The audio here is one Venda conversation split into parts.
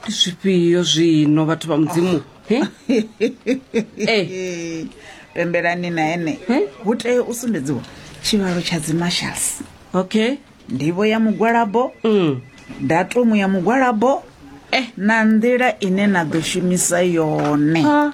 ndi zwifhio zwino vhathu vha mudzimu He? Eh, pembelani na ene Eh? hu tea u sumbedziwa tshivhalo tsha dzimashals okay ndivho ya mugwalabo Mm. datumu ya mugwalabo Eh. na nḓila ine na ḓo shumisa yone Ha,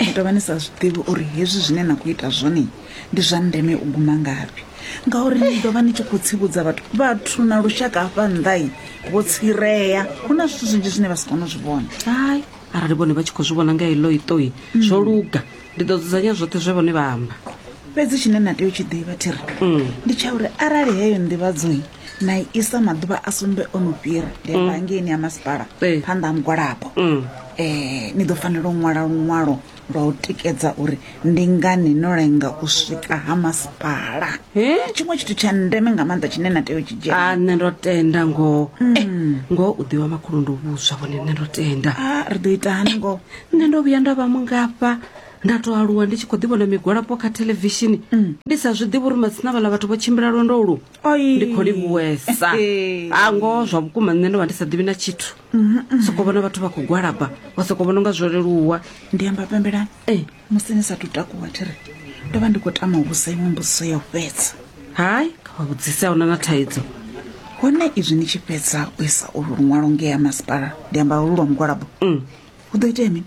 ni tovha ni sa zwiḓivhi uri hezwi zwine na khou ita zwone ndi zwa ndeme u guma ngafhi ngauri ni ḓovha ni tshi khou tsivhudza vhathu vhathu na lushaka hafha nnḓai vho tsireya hu na zwithu zwinzhi zwine vha si kone u zwi vhona hai arali vhone vha tshi khou zwi vhona nga ilo itoi mm. zwo luga ndi ḓo dzudzanya zwoṱhe zwe vhone vha amba fhedzi tshine na tea u tshi ḓivha thiri mm. ndi tsha uri arali heyo nḓivhadzoi na isa maḓuvha a sumbe o no fhira ndi amba mm. ngeini ya masipala eh. phanḓa ha mugwalabo um ni ḓo fanela u ṅwala luṅwalo lwa u tikedza uri ndi ngani no lenga u swika ha masipala tshiṅwe tshithu tsha ndeme nga maanḓa tshine na tea u tshi dzhia ah, nṋe ndo tenda ngoho mm. eh, ngoho u ḓiwa makhulu ndo vhuswa vhone nṋe ndo tenda ah, ri ḓo ita hani ngoho nṋe ndo vhuya nda vha mungafha nda to aluwa ndi tshi khou ḓivhona migwalapo kha thelevishini mm. ndi sa zwi ḓivhi uri matsina vhala vhathu vho tshimbila lwendo lu Oi. ndi khou livhuwesa Ee. a ngoho zwa vhukuma nṋe ndo vha ndi sa ḓivhi na tshithu soko vhona vhathu vha khou gwalaba wa soko vhona unga zwo leluwa ndi amba pembelani Eh. musi ni sa tu takuwa thi ri ndo vha ndi khou tama u vhusa iṅwe mbudziso ya u fhedza hai kha vha vhudzise a huna na thaidzo hone izwi ni tshi fhedza u isa ulu luṅwalo ngea masipala ndi amba ulu lwa mugwalabo hu ḓo itea mini